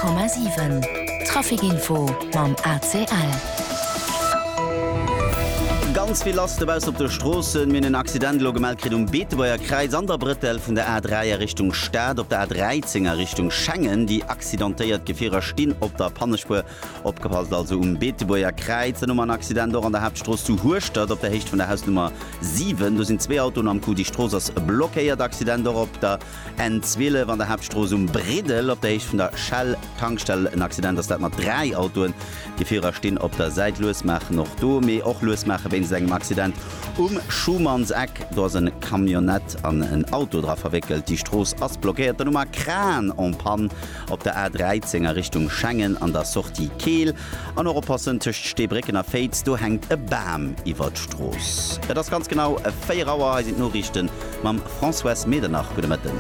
100,7 Trafic Info mam ACL. Ganz vill lass dobaussen op de Stroossen. Mir hunn en Accident elo gemellt kritt um Beetebuerger Kräiz an der Brëttel vun der A3 a Richtung Stad. Op der A13 a Richtung Schengen déi accidentéiert Gefierer stinn op der Pannespuer. Opgepasst also um Beetebuerger Kräiz. Dann hu mer en Accident och an der Haaptstrooss zu Hueschtert op der Héicht vun der Hausnummer 7. Do sinn zwee Autoen am Coup. Déi Strooss ass blockéiert. Accident och op der N12 an der Haaptstrooss um Briddel op der Héicht vun der Shell-Tankstell en Accident. Ass dat mat 3 Autoen. Déi Virer stinn op der Säit, lues maachen och do, mee och lues maache wéinst engem Accident um Schumannseck. Do ass e Camionnette an en Auto dra verwéckelt. Déi Strooss ass blockéiert. Dann hu mer Kran en panne op der A13 a Richtung Schengen an der Sortie Keel. An och oppassen, tëscht Steebrécken a Féiz, do hänkt e Bam iwwer d'Strooss. Et ass ganz genau 4 Auer. Hei sinn d'Noriichte mam Françoise Medernach. Gudde Mëtten.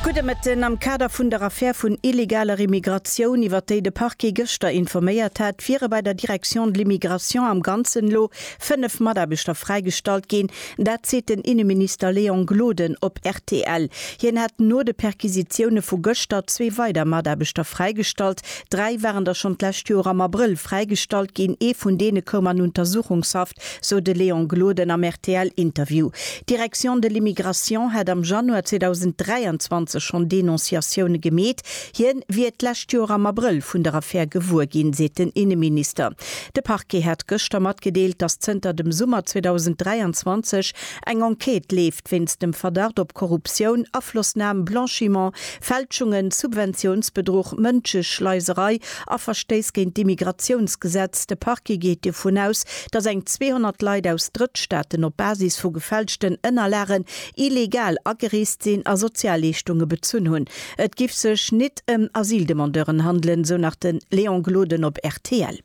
Gudde Mëtten. Am Kader vun der Affär vun illegaler Immigratioun, iwwer déi de Parquet gëschter informéiert hat, wiere bei der Direction de l'Immigration am Ganzen elo 5 Mataarbechter fräigestallt ginn, Dat seet den Inneminister Léon Gloden op rtl. Hien hätt no de Perquisitioune vu gëschter zwee weider Mataarbechter fräigestallt. Dräi waren der schonn d'lescht Joer am Abrëll fräigestallt ginn. Ee vun deene koum an Untersuchungshaft, sou de Léon Gloden am RTL-Interview. D'Direction de l'Immigration hätt am Januar 2023 schonn Denonciatioune gemeet. Hien wier d'lescht Joer am Abrëll vun der Affär gewuer ginn, seet den Inneminister. De Parquet hat gëschter matgedeelt, datt zënter dem Summer 2023 eng Enquête leeft wéinst dem Verdacht op Korruptioun, Aflossnam, Blanchiment, Fälschungen, Subventiounsbedruch, Mënscheschleiserei a Verstéiss géint d'Immigratiounsgesetz. De Parquet geet dovun aus, datt eng 200 Leit aus Drëttstaaten op Basis vu gefälschten Ënnerlagen illegal agereest sinn a Sozialleeschtunge bezunn hunn. Et giff sech nit em Asyldemandeuren handelen, sou nach den Léon Gloden op rtl.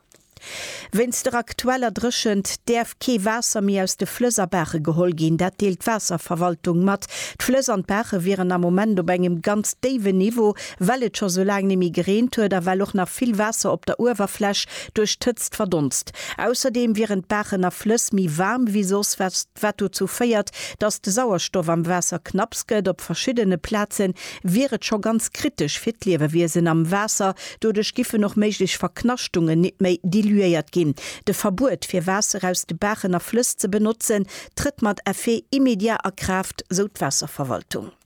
Wéinst der aktueller Dréchent däerf kee Waasser méi aus de Flëss a Baache geholl ginn. Dat deelt d'Waasserverwaltung mat. D'Flëss an d'Baache wieren am Moment op engem ganz déiwen Niveau, well et scho sou laang neméi gereent huet a well och nach vill Waasser op der Uewerfläch duerch d'Hëtzt verdonst. Ausserdeem wieren d'Baachen a Flëss méi waarm wéi soss. wat dozou féiert, datt de Sauerstoff am Waasser knapps gëtt. Op verschiddene Plaze wier et scho ganz kritesch fir d'Liewewiesen am Waasser. Doduerch giffen och méiglech Verknaschtungen nit méi diluéiert ginn. De Verbuet, fir Waasser aus de Baachen a Flëss ze benotzen, trëtt mat Effet immédiat a Kraaft, sou d'Waasserverwaltung.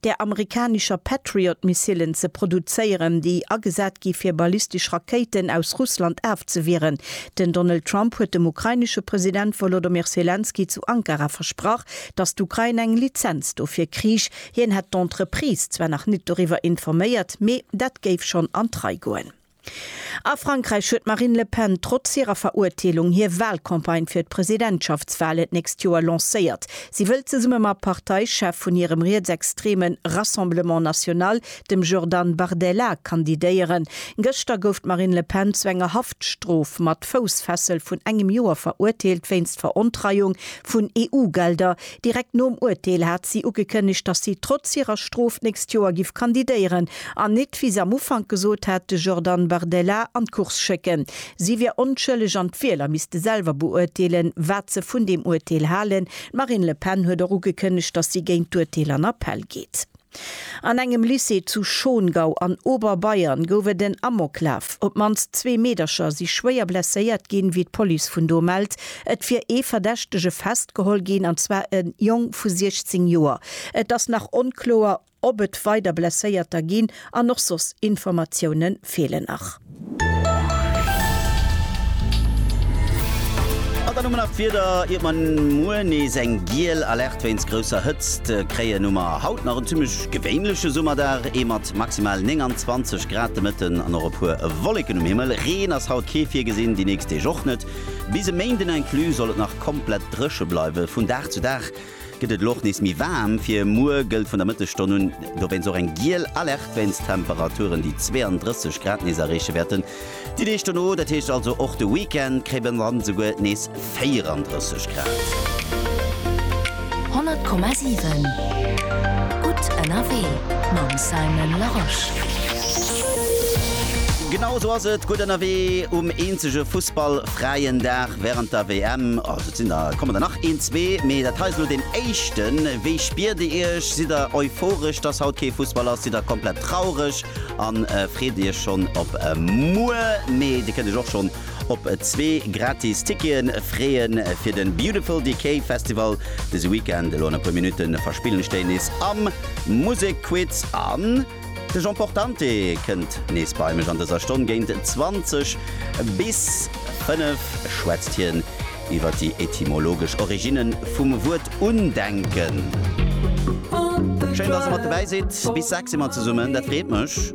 där amerikanischer Patriot-Missilen ze produzéieren, déi agesat gi fir ballistesch Rakéiten aus Russland afzewieren. Den Donald Trump huet dem ukrainesche President Wolodomyr Selenskyj zu Ankara versprach, datt d'Ukrain eng Lizenz dofir kriich. Hien hätt d'Entreprise zwar nach net doriwwer informéiert, mee dat géif schonn an d'Rei goen. A Frankräich huet d'Marine Le Pen trotz hirer Verurteelung hir Walcampagne fir d'Presidentschaftswalen d'nächst Joer lancéiert. Si wëll zesumme mam Parteichef vun hirem rietsextreme Rassemblement National, dem Jordan Bardella, kandidéieren. Gëschter gouf d'Marine Le Pen zu enger Haftstrof mat Foussfessel vun engem Joer verurteelt wéinst Verontreiung vun EU-Gelder, Direkt nom Urteel hat si ugekënnegt, datt si trotz hirer Strof d'nächst Joer giff kandidéieren an nit, wéi se am Ufank gesot hat, de Jordan Bardella an d'Course schécken. Si wier onschëlleg an d'Wieler misste selwer beurteelen, wat se vun deem Urteel halen. D'Marine Le Pen huet och ugekënnegt, datt si géint d'Urteel an Appell geet. An engem Lycée zu Schongau an Oberbayern gouf et en Amoklaf. Op d'mannst zwee Meedercher si schwéier blesséiert ginn, wéi d'Police vun do mellt. Et wier ee Verdächtege festgeholl ginn, an zwar e Jong vu 16 Joer. Et ass nach onkloer, ob et weider Blesséierter ginn an och soss Informatioune feelen nach. An dann hu mer nach d'Wieder, iert mer muer nees eng giel Alerte wéinst grousser Hëtzt kréien, hu mer haut nach en zimmlech gewéinleche Summerdag, ee mat maximal 29 Grad de Mëtten an och e puer Wolleken um Himmel. Reen ass haut kee virgesinn, déi nächst Deeg och net. Bis e Méinden inclus soll et nach komplett dréche bleiwen, vun Dag zu Dag Gëtt et elo och nees méi waarm. Fir muer gëllt vun der Mëttesstonn un dowéinst och eng giel Alerte wéinst Temperaturen, déi 32 Grad nees erreeche wäerten. Déi Deeg dono, dat heescht also och de Weekend, kréie mer dann esouguer nees 34 Grad. 100,7 Gutt ënnerwee mam Simon Larosche. Genau esou ass et, Gutt ënnerwee um eenzege Fussball-fräien Dag wärend der WM. Sinn der, kommen der nach een, zwee, mee dat hei ass elo deen éischten. Wéi spiert Dir Iech? Sidd der euphoresch, dass haut kee Fussball ass? Sidd der komplett traureg a freet Dir Iech schonn op muer? Mee Dir kënnt Iech och schonn op zwee gratis Ticketen freeën fir de Beautiful Decay Festival dëse Weekend. Elo an e puer Minutte verspillen ech déi nees am Musekquiz an. De Jean Portante kënnt nees bei mech. An dëser Stonn géint 20 bis 5 schwätzt hien iwwer déi etymologesch Originne vum Wuert undenken. Schéin, dass Der mat dobäi sidd. Bis 6 si mer zesummen, dat freet mech.